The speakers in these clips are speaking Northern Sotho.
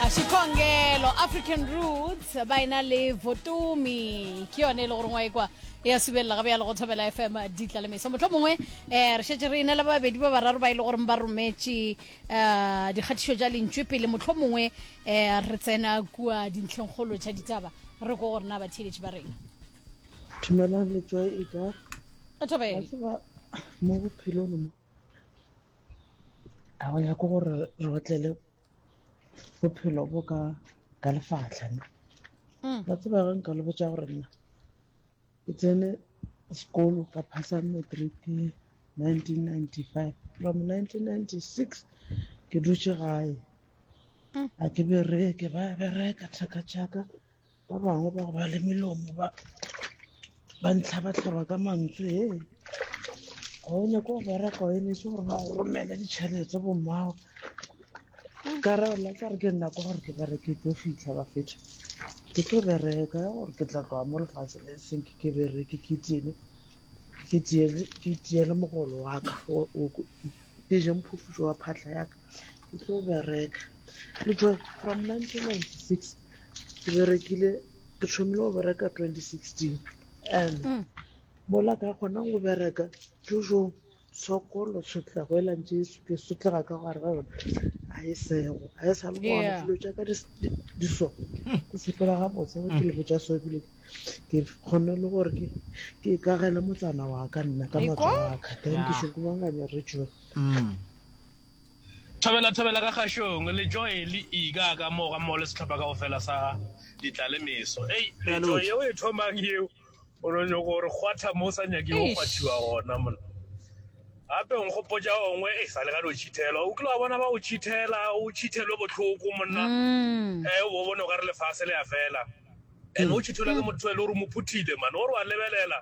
Shikongelo, African Roots, ba ena le Votomi, ke yone e le gore ngwa e kwa e a subelela gabe ya le go thobela fm ditla le meso motlho mongwe um eh, re šetse re ene le babedi ba bararo ba e le goreng ba rometše um eh, dikgatišo tša lentšwe pele motlho mongwe um re tsena kua dintlheng kgolo tša ditaba re ko gorena batheeletši ba rena dumelang letswa e ka mo bophelong mo a go ya ko gore re otlele bophelo bo ka ka lefahla nna mm. ba tseba ge nka le botsa gore nna ke tsene sekolo ka phasa matric 1995 from 1996 ke dutše gae mm. a ke bereke ba bereka thaka tšaka ba bangwe ba go ba le melomo ba ba ntlhabatlhaba ka mantswe e ga o nyako go bereka o emetse gore ba go romele ditšhelete bommago ka ra lla ka re ke nna kwa gore ke bare ke tlo fitlha ba fetha ke tlo bereka ya gore ke tla tloga mo lefatshe le seng ke ke bereke ke tiele ke tiele ke tiele mogolo wa ka o ke je mphufutso wa phatlha ya ka Ke tlo bereka. Le tšwa from nineteen ninety six ke berekile ke thomile go bereka twenty sixteen and mm. mola ka kgona go bereka jojo sokolo sotlego e lantše e suke sotlega ka gare ga yona ga e sego ga e sa le gona dilo tša ka di so ke sepela ga botse ke mm. lebo tša so ebile ke kgone le gore ke kagele motsana wa ka nna ka matsa wa ka then ke shokobanganya re joe mm. Thobela, thobela ka kgašong, le joy le ika ka mo ga mmogo le sehlopha ka go fela sa ditlale meso. Ei, le joy yeo e thomang yeo, o no nyoko gore kgwatha mo sa nyake go kgwathiwa gona mona. Gape o nkgopotša ongwe e sa le gane o tšhithelwa o kile wa bona ba o tšhithela o tšhithelwe bohloko monna mm. e o bone o ka re lefase le ya fela and o tšhithola ke motho e le gore o mo phuthile mane o re wa lebelela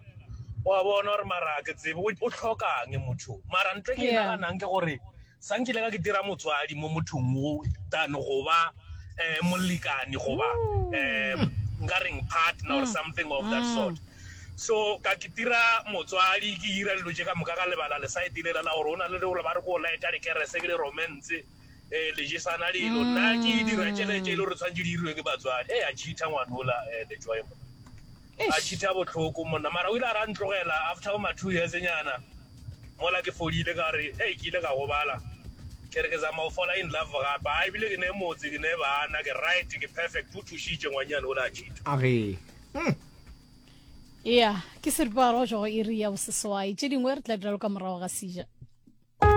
wa bona gore mara ke tsebe o tlhokang motho mara ntle ke naganang ke gore sa nkile ka ke dira motswadi mo mothong o tane goba um molekane goba um nka reng partner or something of that sort so ka ke dira motswadi ke dira dilo tse ka moka ka lebala le sa e direla la gore o na le le gore ba re ko laeta lekerese ke le romance Eh, le jesana lelo nna ke mm. dira tšhelete e le gore tshwanetse di iriwe ke batswadi e eh, a cheatha ngwanola um eh, lejoy mo a cheatha botlhoko monna mara o ile a ra ntlogela after bo ma-two years nyana mola ke fodile ka re e ke ile ka gobala ke re ke zama go fola in love gape a ebile ke ne motse ke ne bana ke right ke perfect o thušitše ngwanyane o le a cheatha age hmm. ya ke seripagaro go jago iri ya boseswai tše dingwe re tla dira lo ka morago ga sija